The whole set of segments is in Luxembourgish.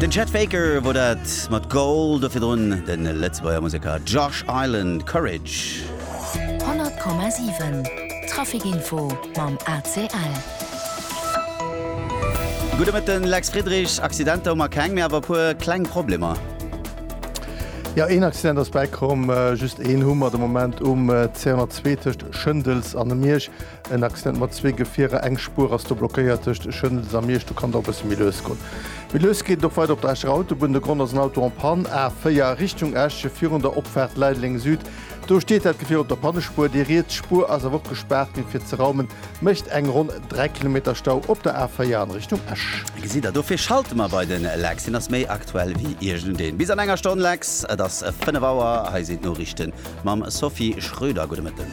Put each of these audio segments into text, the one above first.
Den Chet Faker wor dat mat Goal, do virdrun de Lëtzebuerger Museker Josh Island, Courage. 100,7 Traficinfo mam ACL. Gudde Mëtten, Lex Friedrich. Accidenter hu mer keng, mee awer e puer kleng Problemer. Jo, een Accident ass bäikomm, just een hu mer de Moment um C102 tëscht Schëndels an dem Miersch. En Accident mat zwee Gefierer, eng Spuer ass do blockéiert tëscht Schëndels a Miersch. Do kann et och e bësse méi lues goen. Méi lues geet et och weider op der Escherer Autobunn. De Grond ass en Auto en panne, A4 Richtung Esch, virun der Opfaart Leideleng Süd. Do steet dat Gefier op der Pannespuer. Déi riets Spuer ass awer och gespaart ginn. Fir ze raumen, mécht eng ronn 3 Kilometer Stau op der A4 an Richtung Esch. Gesitt der, dofir schalte mer bei den Lex, hien ass méi aktuell wéi iergendeen. Bis an enger Stonn Lex, et ass 5 Auer, hei sinn d'Noriichten. Mam Sophie Schröder, gudde Mëtten.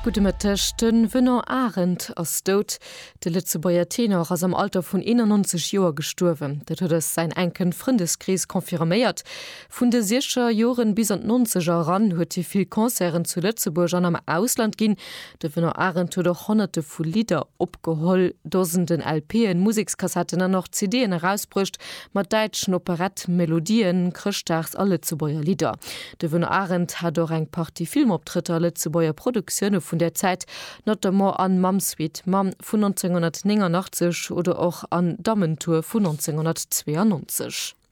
Gudde Mëtteg. De Venant Arendt ass dout. De Lëtzebuerger Tenor ass am Alter vun 91 Joer gestuerwen. Dat huet eis säin enken Frëndeskrees confirméiert. Vun de Siecher Joren bis an d'Nonzeger eran huet hie vill Concerten zu Lëtzebuerg an am Ausland ginn. De Venant Arendt huet och Honnerte vu Lidder opgeholl, Dosenden LP'en, Musekskassetten an och CD'en erausbruecht mat däitschen Operett-Melodien, Chrëschtdags a Lëtzebuerger Lidder. De Venant Arendt hat och eng Partie Filmoptrëtter a Lëtzebuerger Produktioune vun där Zäit, notamment an Mamm Sweet Mamm vun 1989 oder och an Dammentour vun 1992.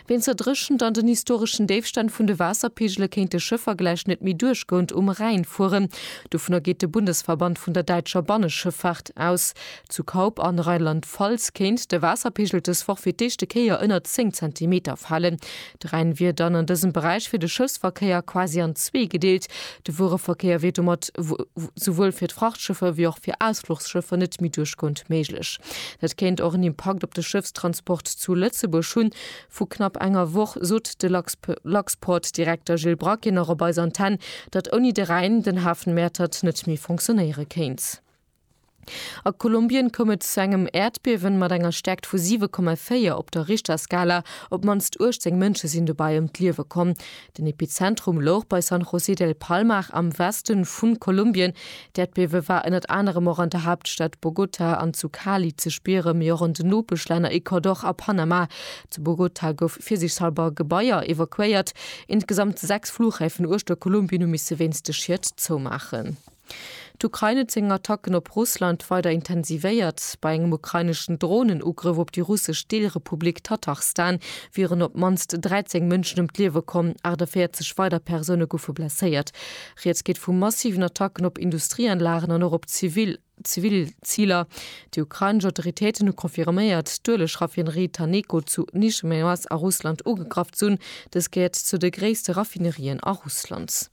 Ween zerdréchent an den historeschen Déifstänn vun de Waasserpeegele kéinte Schëffer gläich net méi duerch Gound um Rhäin fueren. Dovunner geet de Bundesverband vun der däitscher Banneschëffahrt aus. Zu Kaup an Rheinland-Pfalz kéint de Waasserpeegel dës Woch fir d'éischte Kéier ënnert 10 Zentimeter falen. De Rhäin wier dann an dësem Beräich fir de Schëffsverkéier quasi an zwee gedeelt, De Wuereverkéier wier domat souwuel fir d'Frachtschëffer wéi och fir Ausfluchsschëffer net méi duerchgoend méiglech. Dat kéint och en Impakt op de Schëffstransport zu Lëtzebuerg hunn. Vu knapp enger Woch sot de Luxport-Direkter Gilles Braquet nach op eiser Antenne, datt ouni de Rhäin den Hafen Mäertert net méi fonctionéiere kéint. A Kolumbien koum et zu engem Äerdbiewen mat enger Stärkt vu 7,4 op der Richterskala. Op d'mannst 18 Mënsche sinn dobäi ëm d'Liewe komm. Den Epizentrum louch bei San José del Palmar am Weste vu Kolumbien. D'Äerdbiewe war ënnert anerem och an der Haaptstad Bogota an zu Cali ze spieren, mee och an den Nopeschlänner Ecuador a Panama. Zu Bogota gouf virsichshalber Gebaier evakuéiert. Insgesamt 6 Flughäfen uechter Kolumbien hu misse wéinst de Schied zoumaachen. D'Ukrain huet seng Attacken op Russland weider intensivéiert. Bei engem ukraineschen Dronenugrëff op déi russesch Deelrepublik Tatarstan wieren op d'mannst 13 Mënschen ëm d'Liewe komm, 48 weider Persoune goufe blesséiert. Rieds geet vu massiven Attacken op Industrieanlagen an och op zivil Ziler. Déi ukrainesch Autoritéiten hu confirméiert, d'Ueleg-Raffinerie Taneco zu Nizhnejoaz a Russland ugegraff z'hunn. Dës gehéiert zu de gréisste Raffinerien a Russland.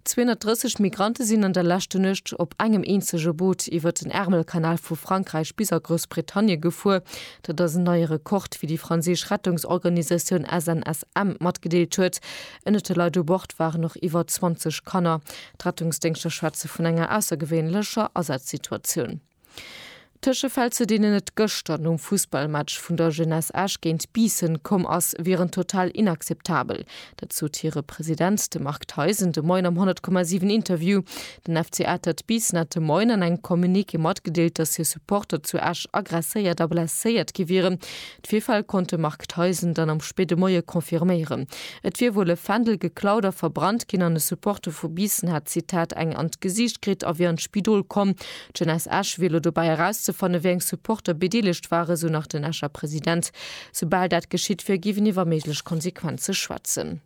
230 Migrante sinn an der leschte Nuecht op engem eenzege Boot iwwert den Ärmelkanal vu Frankräich bis a Groussbritannie gefuer. Dat ass en neie Rekord, wéi déi franséisch Rettungsorganisatioun SNSM matgedeelt huet. Ënnert de Leit u Bord waren och iwwer 20 Kanner. D'Rettungsdéngschter schwätze vun enger aussergewéinlecher Asazsituatioun. Tëschefäll, zu deenen et gëschter nom Fussballmatch vun der Jeunesse Esch géint Biissen komm ass, wieren total inakzeptabel. Dat sot hire President, de Marc Theis, en de Moien am 100,7 Interview. Den FC Atert Biissen hat de Moien an engem Communiqué matgedeelt, datt hir Supporter zu Esch aggresséiert a blesséiert gi wieren. D'Virfäll konnt de Marc Theisen dann am spéide Moie confirméieren. Et wier wuel e Fändel geklaut a verbrannt ginn an e Supporter vu Biissen hätt, Zitat, eng an d'Gesiicht kritt a wier an d'Spidol komm. D'Jeunesse Esch wier elo dobäi erauszefanne wéi eng Supporter bedeelegt ware, sou nach den Escher President. Soubal dat geschitt wier, géif een iwwer méiglech Konsequenze schwätzen.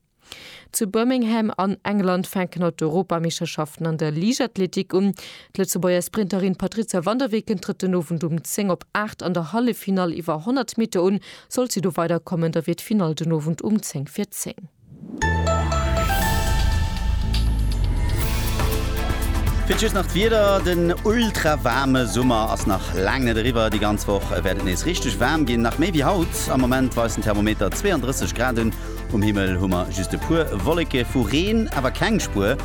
Zu Birmingham an England fänken haut d'Europameeschterschaften an der Liichtathletik un. D'Lëtzebuerger Sprinterin Patrizia van der Weken trëtt den Owend um 10 op 8 an der Halleffinall iwwer 100 Meter un. Sollt si do weiderkommen, da wier d'Finall den Owend um 10 fir 10. Fir d'Just nach d'Wieder, Den ultra waarme Summer ass nach laang net eriwwer. Déi ganz Woch wäert et nees richteg waarm ginn, nach méi wéi haut. Am Moment weist den Thermometer 32 Grad un. Um Himmel hu mer just e puer Wolleke vu Reen, awer keng Spuer.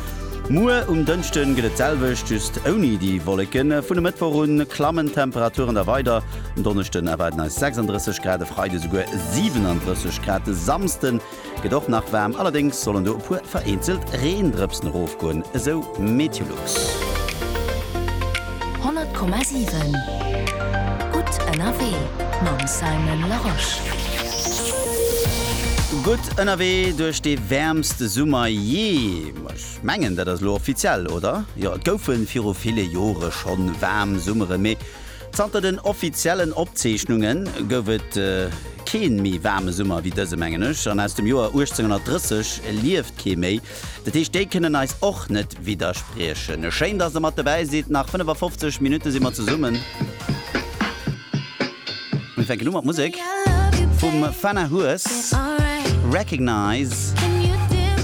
Muer um Dënschde gëtt et d'selwecht, just ouni déi Wolleken. Vun e Mëttwoch u klammen d'Temperaturen da weider, en Donneschden erwaarden eis 36 Grad, e Freide souguer 37 Grad. De Samsde gëtt och nach waarm, allerdéngs sollen do e puer vereenzelt Reendrëpsen erofgoen, esou Meteolog. 100,7 Gutt ënnerwee mam Simon Larosche. Gutt ënnerwee duerch dee wäermste Summer jee. Ech mengen, dat ass elo offiziell, oder? Jo, et goufe viru ville Jore schonn waarm Summere, mee zanter den offiziellen Opzeechnunge gouf et kee méi waarme Summer wéi dëse, mengen ech. An aus dem Joer 1830 lieft kee méi. Dat heescht, déi kënnen eis och net widderspriechen. Schéin, dass der mat dobäi sidd. Nach 55 Minutte si mer zesummen. Mir fänken u mat Musek vum Fana Hues. Recognise,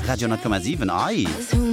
Radio 10,7. Ei!